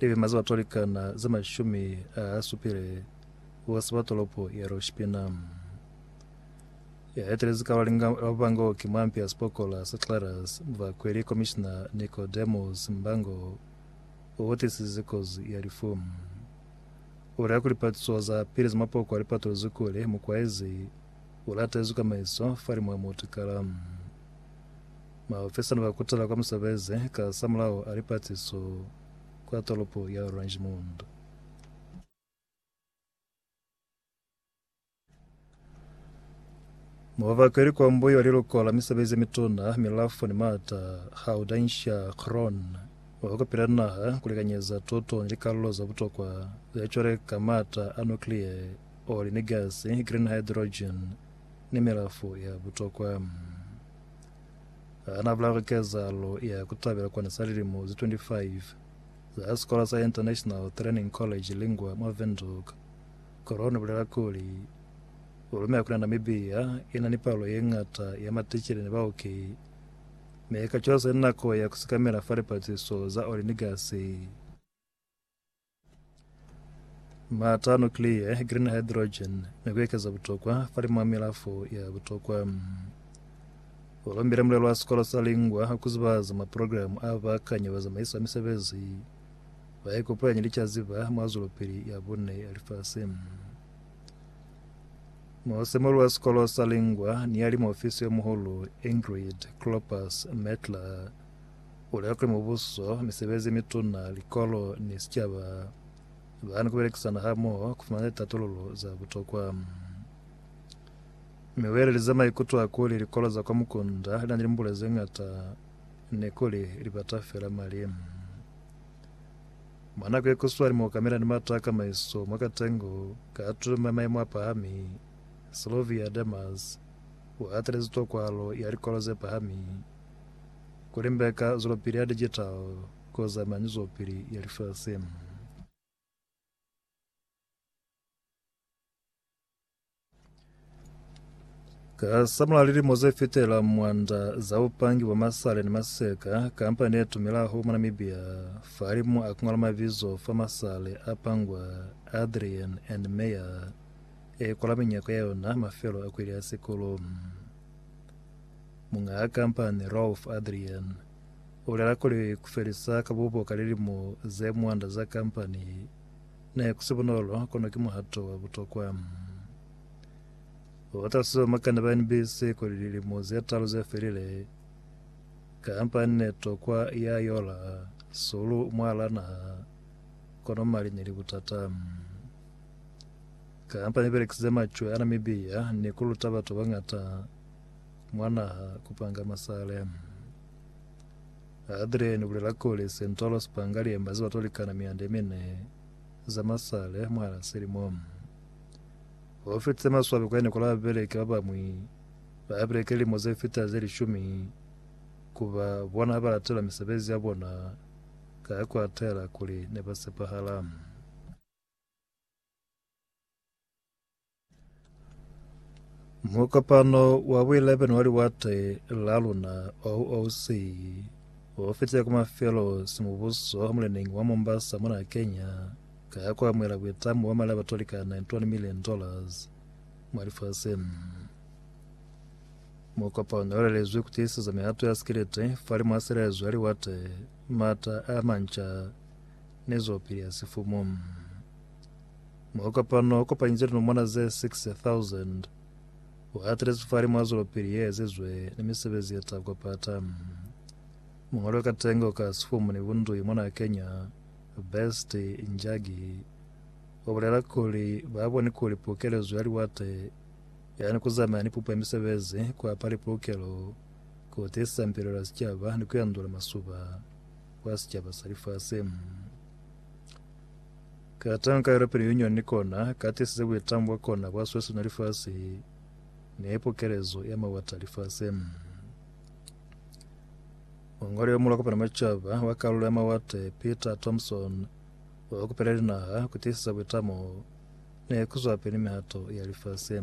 Libi maze ba twalikana ze mashumi a supile kuba siba tolopo ya Rushpina. Ya etelezi ka balinga ba Mbango ki mwampi ya sipokola sa Clarus Mvakweli Komishina Nicodemus Mbango o otisize kozi ya lifu. O lia ku lipatuso za pili za mapoko a lipatulozi kuli mukwaezi o latezwi ka maiso fa limu a mutikala. Maofisa ne ba kutela kwa musebezi kasamulaho a lipatiso kwa tolopo ya Oranjemund. Mubaka ili kwa mbuyo liluko la misebezi ye mituna, milafo ni maata, Haudancia Krohn, wa kwa kupila naha ku likanyeza tuto ni likalulo za butokwa ze cwale ka maata a nuclear, oli ni gasi, green hydrogen, ni milafo ya butokwa. Ha na bulala kezahalo ya ku tabela kona sa lilimo ze 25 za sikola sa International Training College Lingua mwa Windhoek, Corona bulela kuli, U lumela kuli Namibia i na ni palo ye ñata ya maticele ni baoki, mi ka cwalo se nako ya ku sikamela fa lipatiso za oli ni gasi. Maata a nukliya, green hydrogen, ni ku ekeza butokwa fa limo milafo ya butokwa. Ba lombile mulelo wa sikolo sa Lingwa ku zibahaza maprogramu a bakanyi bazamaisi ba misebezi ba ikopanya ni caziba mwa zwelopili ya bune ya lifasi. Mosemoli wa sikolo sa Lingwa ni ya limo ofisi yo muhulu Ingrid Klopas Metler Bulaki, mubuso, misebezi yemituna, likolo ni sicaba bani kubelekisana hamoho kufumana litatululo za butokwa. Mi uelelize maikuto a kuli likolo za kwa mukunda linani limbule zeñata ni kuli libata fela mali. Mwa nako yekuswani muokamela ni mata a kamaiso mwa katengo ka tumo ya maimo apahami, Sylvia Demers uatelezi tokwahalo ya likolo zepahami Ku limbeka zwelopili ya digital ku zamaya ni zwelopili ya lifasi. Ka samulaho lilimo ze fitela mwanda za bupangi bwa masale ni maseka, kampani ye tumelaho mwa Namibia fahalimu a ku ngwala mabizo fa masale a pangwa Adrian and Meyer e kwala minyako ya yona mafelo a kweli ya sikulu. Muñ'a kampani Rolf Adrian u bulela kuli, Ku felisa ka bubo ka lilimo ze mwanda za kampani ne ku si bunolo, kono ki muhato wa butokwa. U talusize bamakani ba NBC kuli lilimo ze talu ze felile, kampani ne tokwa ya yola sulu mwal'a naha, kono mali ne li butata. Kampani i belekisize macwe a Namibia ni ku luta batu ba bañata mwa naha kupanga masale. Adrian ubulela kuli Central Spangale emba ziba tolikana miande mine za masale mwana selimo. Ho fitse maswabi kwa nikola beleke ba bamwi ba beleke limo ze fita ze lishumi kuba bona ba latela misebezi ya bona ka kwa tela kuli ne ba sepahala. Mukopano wa bo 11 wa liwate la luna OOC o fetile ku mafelo simubuso ha muleneñi wa Mombasa mona Kenya ka ku amuhela buitamo bwa mali a batoli ka 91 million dollars mwa lifaseng. Mukopano o lelezwi ku tiiseza mihato ya sikiliti fali mwa silaezo ya liwate, mata a manca ni zwapili ya sifumu. Mwa kopano o kopanyize linomona ze 6000. U atelezi fali mwa zwelopili ye ezizwe ni misebezi ye ta kopata. Mungoli wa katengo ka sifumu ni bundui mona Kenya, Best Njagi, u bulela kuli ba boni kuli pukelezo ya liwate yani ku zamaya ni pupo ya misebezi, ku apa lipukelo, ku tiisa mpilelo ya sicaba ni ku yandula masuba kwa sicaba sa lifasi. Ka tanka ya lupili Union ni kona ka tisize buitangu bwa kona bwa sweswi na lifasi ne pokelezo ya mawata lifase. Mongwali yo mulwa kopana macaba wa kalulo ya mawate Peter Thompson wa kupela linaha ku tisisa buitamo ne ku zwa pili mihato ya lifase.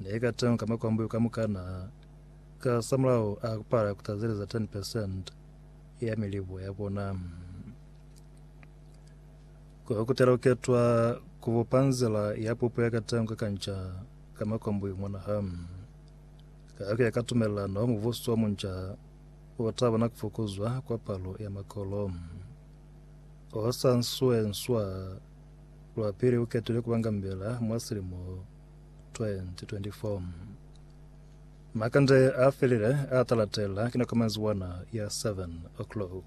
Ne ka temo ka makwambuyu kamukana, kasamulaho a kupala kutazeleza 10 percent ya milibo ya bona. Ko kutela kuketwa kubupa nzila ya pupo ya katemo ka kanca ka makwambuyu mwanaha. Ka kuya ka tumelelano, mubuso wa munca utabona kufukuzwa kwa palo ya makolo. Osa nswe nswa Lwapili uketile kuba ngambela mwa silimo 2024. Makande afelile atalatela kina komanzi wana ya 7 o'clock.